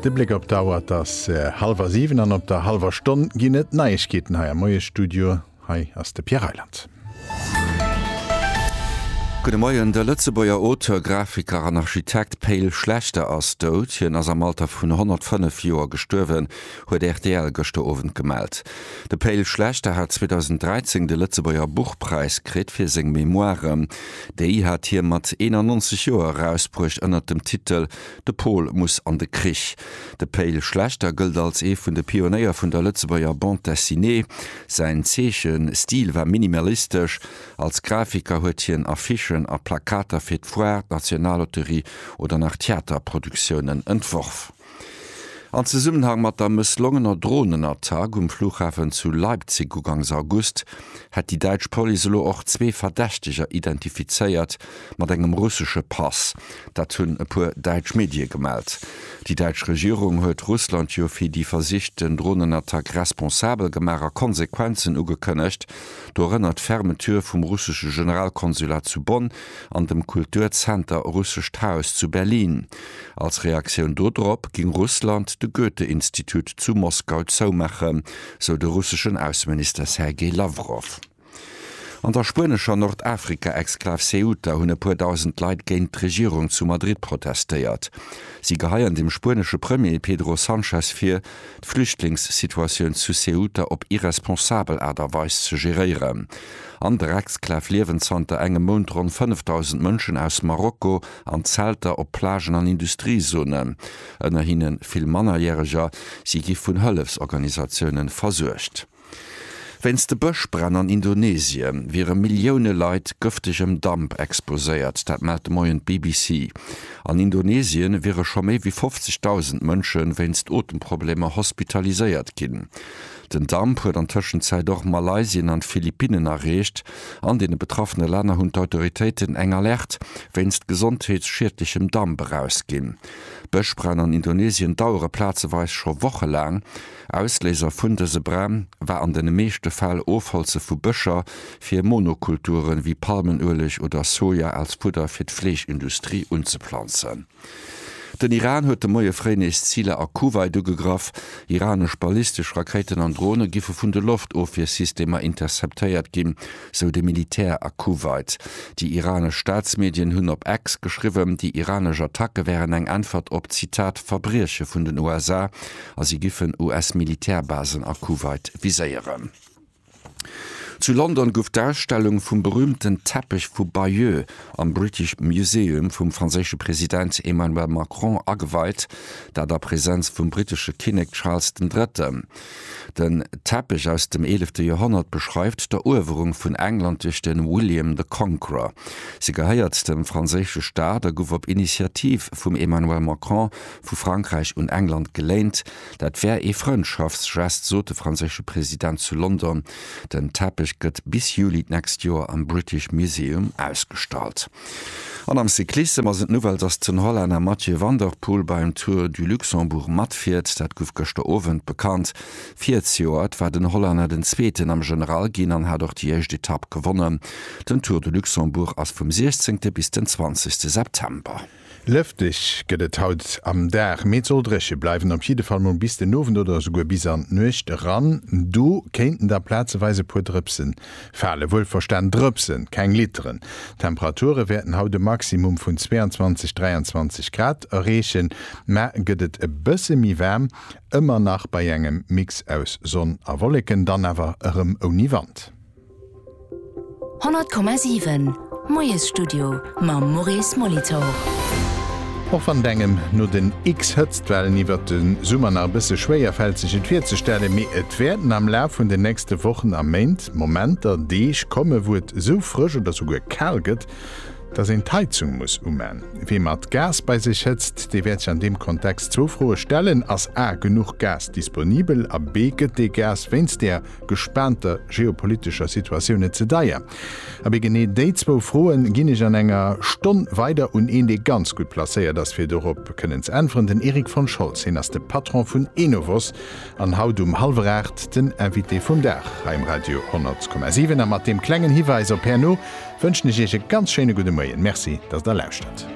De Bléck op d'Auer, et ass hallwer 7 an op der hallwer Stonn ginn et Neiegkeeten hei am Moiesstudio. Hei ass de Pierre Reyland. Gudde Moien. De Lëtzebuerger Auteur, Grafiker an Architekt Pe'l Schlechter ass dout. Hien ass am Alter vun 105 Joer gestuerwen. huet rtl gëschter Owend gemellt. De Pe'l Schlechter hat 2013 de Lëtzebuerger Buchpräis kritt fir seng Memoiren. Déi hat hie mat 91 Joer erausbruecht ënnert dem Titel De Pol muss an de Krich. De Pe'l Schlechter gëllt als ee vun de Pionéier vun der Lëtzebuerger Bande Dessinée. Säin Zeechestil war minimalistesch. Als Grafiker huet hien Affichen a Plakater fir d'Foire, d'Nationalloterie oder nach Theaterproduktiounen entworf. An Zesummenhang mat der mësslongener Dronenattack um Flughafen zu Leipzig ugangs August hätt déi däitsch Police elo och zwee Verdächteger identifizéiert, mat engem russesche Pass. Dat hunn e puer däitsch Medie gemellt. Déi däitsch Regierung huet Russland jo fir déi versichten Dronenattack responsabel gemaach a Konsequenzen ugekënnegt, dorënner d'Fermeture vum russesche Generalkonsulat zu Bonn an dem Kulturzenter Russescht Haus zu Berlin. Als Reaktioun dodrop géing Russland de Goethe-Institut zu Moskau zoumaachen, sou de russeschen Ausseminister Sergej Lawrow. An der spuenescher Nordafrika-Exklav Ceuta hunn e puer dausend Leit géint d'Regierung zu Madrid protestéiert. Si geheien dem spuenesche Premier Pedro Sanchez vir, d'Flüchtlingssituatioun zu Ceuta op irresponsabel Aart a Weis ze geréieren. An der Exklav liewen zanter engem Mount ronn 5.000 Mënschen aus Marokko, an Zelter op Plagen an Industriezonen, ënner hinne vill Mannerjäreger. Si gi vun Hëllefsorganisatioune versuergt. Wéinst de Bëschbränn an Indonesie wiere Millioune Leit gëftegem Damp exposéiert. Dat mellt de Moien d'BBC. An Indonesien wiere scho méi wéi 50.000 Mënsche wéinst Otemproblemer hospitaliséiert ginn. Den Damp huet an Tëschenzäit och Malaysien an d'Philippinnen erreecht. An deene betraffene Länner hunn d'Autoritéiten eng Alerte wéinst gesondheetsschiedlechem Damp erausginn. Bëschbränn an Indonesien dauere plazeweis scho wochelaang. Ausléiser vun dëse Bränn war an de meeschte Fäll Ofholze vu Bëscher fir Monokulturen, wéi Palmenueleg oder Soja als Fudder fir d'Fleeschindustrie unzeplanzen. Den Iran huet de Moie fréi nees Ziler a Kuwait ugegraff. Iranesch ballistesch Rakéiten an Drone giffe vun de Loftofwiersystemer interceptéiert ginn, sou de Militär a Kuwait. Déi iranesch Staatsmedien hunn op X geschriwwen, déi iranesch Attacke wären eng Äntwert op, Zitat, Verbrieche vun den USA a si giffen US-Militärbasen a Kuwait viséieren. Zu London gouf d'Ausstellung vum berüümten Teppech vu Bayeux am British Museum vum franséische President Emmanuel Macron ageweit, dat a Presenz vum brittesche Kinnek Charles den Drëtten. Den Teppech aus dem eelefte Joerhonnert beschreift d'Eruewerung vun England duerch de William the Conqueror. Se gehéiert dem franséische Staat a gouf op Initiativ vum Emmanuel Macron vu Frankräich un England geléint, Dat wär ee Frëndschaftsgest, sot de franséische President zu London. Den Teppech gëtt bis Juli d'nächst Joer am British Museum ausgestallt. An am Cyclissem ass et Nouvelle, dass den Hollänner Mathieu van der Poel beim Tour du Luxembourg matfiert. Dat gouf gëschter Owend bekannt. Virzijoert war den Hollänner den Zweeten am General ginn an hat och déi éischt Etapp gewonnen. Den Tour du Luxembourg ass vum 16 bis den 20 September. Lëfteg gëtt et haut am Dag, mee et soll dréche bleiwen, op jidde Fall mol bis den Owend oder esouguer bis an d'Nuecht eran. Do kéinten da plazeweis e puer Drëpse falen, wuelverstan Drëpse, keng Litteren. D'Temperature wäerten haut e Maximum vun 22, 23 Grad erreechen, mä gëtt et e bësse méi waarm, ëmmer nach bei engem Mix aus Sonn a Wolleken, dann awer erëm ouni Wand. 100,7 Moiesstudio mam Maurice Molitor. Och wann et engem no den X-Hëtztwellen iwwert de Summer nach e bësse schwéier fält sech et virzestellen, mee et wäerten am Laf vun den nächste Wochen a Méint Momenter, Deeg komme wou et esou frësch oder souguer kal gëtt, dass een d'Heizung muss uman. Wee mat Gas bei sech hëtzt, dee wäert sech an deem Kontext zwou Froe stellen, Ass a genuch Gas disponibel a b gëtt dee Gas wéinst där gespaanter geopolitescher Situatioun net ze deier? Abee genee déi zwou Froe ginn ech an enger Stonn weider un een, dee ganz gutt placéiert ass fir dorop kënnen ze äntweren, den Erik von Scholz. Hien ass de Patron vun Enovos an haut um hallwer 8 den Invité vum Dag hei um Radio 10,7. A mat deem klengen Hiwäis op Pernod wënschen ech Iech e ganz schéine gudde Moien. Merci, datt Der lauschtert.